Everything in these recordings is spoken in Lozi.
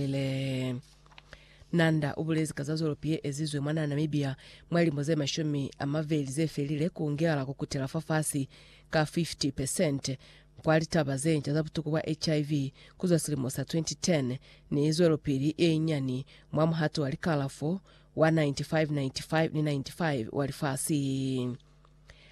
Ile. Nanda ubulezi ka za zolopi ye ezizwe mwa Namibia mwa limo ze mashumi a mabeli ze felile ku ngela ku kutela fa fasi ka 50% kwa litaba ze nca za butuku bwa HIV ku zwa silimo sa 2010 ni zwelopili ye nyani mwa muhato wa likalafo wa 95 95 ni 95 wa lifasi.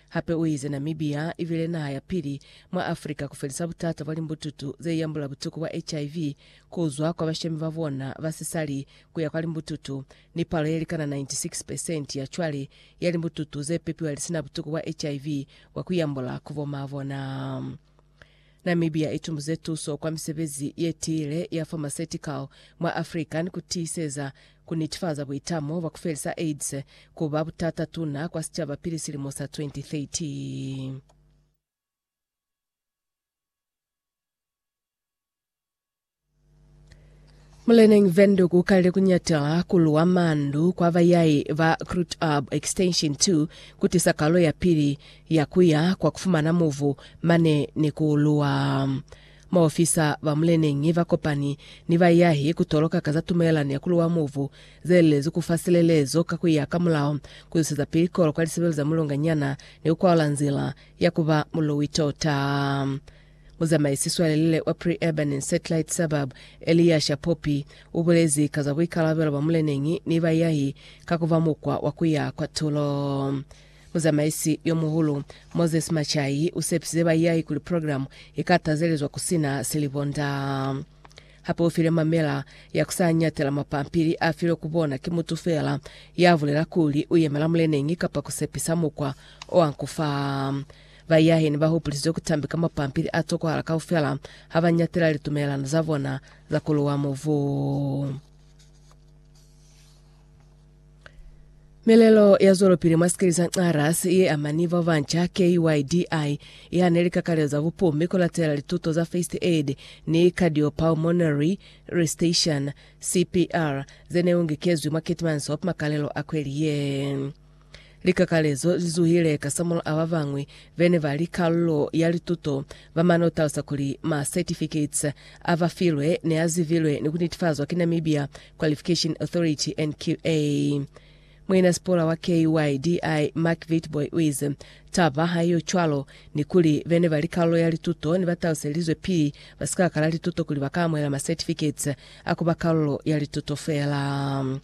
Hape uize Namibia ibile naha ya pili mwa Africa kufelisa butata bwa limbututu zeiambula butuku bwa HIV kuzwa kwa bashemi babona ba sisali kuya kwa limbututu, ni palo yelikana 96% ya cwale ya limbututu zepepiwa lisina butuku bwa HIV bwa kuiambula ku bo maa bona. Namibia i tumbuze tuso kwa misebezi ye tiile ya pharmaceutical mwa Africa ni ku tiiseza ku nitifaza buitamo bwa ku felisa AIDS ku ba butata tuna kwa sicaba pili silimo sa 2030. Muleneñi Windhoek ukalile kunyatela kuluwa mandu kwa bayayi ba Kruitub Extension 2 kutisa kalo ya pili ya kuya kwa kufumana muvu mane ni kuuluwa. Maofisa ba muleneñi bakopani ni bayahi kutoloka ka za tumelelano ya kuluwa muvu zelelezi kufa silelezo ka kuya ka mulao, kuzwiseza pili kolo kwa lisebelo za mulonganyana ni kukwalula nzila ya kuba muluwi tota. Muzamaisi-swalelele wa Pre-Urban and Satellite Suburb, Eliasha Poppy, ubulezi ka za buikalabelo bwa muleneñi ni bayahi ka kuba mukwa wa kuya kwa tulo. Muzamaisi yomuhulu, Moses Machayi, usepisize bayahi kuli program ika tazelezwa kusina silibonda. Hape ufile mamela ya kusa nyatela mapampili afilwe ku bona ki mutu feela ya bulela kuli uyemela muleneñi kapa kusepisa mukwa oankufa. Bayaheni ba hupulizwe ku tambeka mapampili a tokohala kaufela ha ba ñatela litumelelano za bona za ku luwa mubu. Melelo ya zwelopili mwa sikili sa Nxarras ye amani ba banca KYDI i hane likakalelo za bupumi ku latela lituto za first aid ni cardiopulmonary resuscitation, CPR, ze ne ungekezwi mwa Keetmanshoop makalelo a kweli ye. Likakalezo li zuhile kasamulaho ba bañwi be ne ba li kalulo ya lituto ba mane ku talusa kuli ma certificates a ba filwe ne a zibilwe ni ku netifazwa ki Namibia Qualification Authority, NQA. Muinasipula wa KYDI, Mark Witbooi u ize, Taba ha i yo cwalo ni kuli be ne ba li kalulo ya lituto ne ba taluselizwe pili ba si ka kala lituto kuli ba ka amuhela ma certificates a ku ba kalulo ya lituto feela.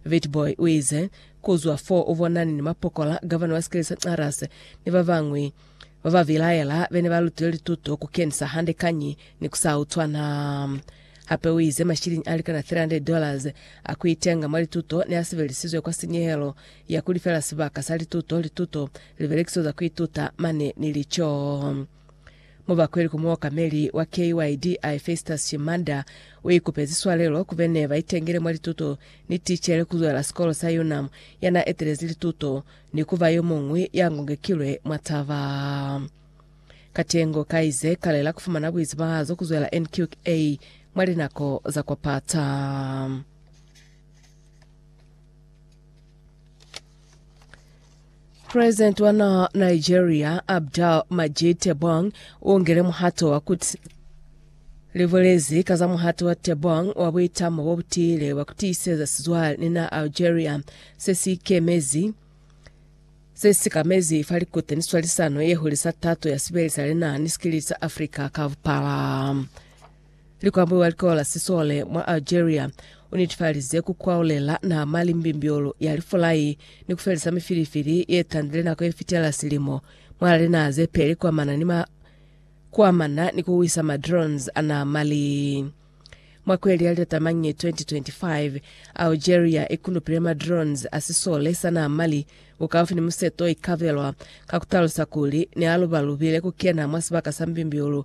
Witbooi u ize, Ku zwa fo u bonani ni mapokola, Gavana wa sikeli sa Xarras ni ba bañwi ba ba bilaela be ne ba lutile lituto ku kenisa hande kañi ni ku sa utwana. Hape u ize mashiliñi a likana $300 dollars a ku itenga mwa lituto ne a sebelisizwe kwa sinyehelo ya ku lifela sibaka sa lituto, lituto, libelekiso za ku ituta mane ni lico. Mubakweli ku muokameli wa KYDI Festus Shimanda uikupezi swalelo ku bene baitengele mwa lituto ni ticele kuzwela sikolo sa UNAM yana etelezi lituto ni kuba yomuñwi ya ngongekilwe mwa taba. Katengo kaize kalela kufumana buizibahazo kuzwela NQA mwa linako za kwa pata. President wa naha Nigeria, Abdul Majid Tebboune, u ngele muhato wa ku libolezi ka za muhato wa Tebboune wa buitamo bo butile bwa ku tiiseza sizwale ni naha Algeria se si ikemezi se si kamezi fa likute ni swalisano ye hulisa tato ya sibeli sa linaha ni sikilili sa Africa ka bupala. Likwambulu wa likola la sisole mwa Algeria unetifalize kukwaolela nama limbimbyolo ya lifulai ni kufelisa mifilifili yetandile nako yefitela silimo mwa linaha zepeli kuamana ni ma kuamana ni kuwisa ma drones a nama li mwa kweli ya litatamanyi 2025 Algeria ikulupile ma drones a sisole sa nama li bukaufi ni museto ikabelwa ka kutalusa kuli ne alubalubile kukena mwa sibaka sa mbimbyolo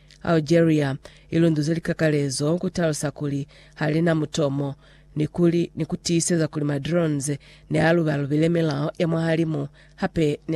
Algeria i lunduze likakalezo ku talusa kuli ha li na mutomo ni kuli ni ku tiiseza kuli ma drones ne a lubalubile milao ya mwahalimu hape ne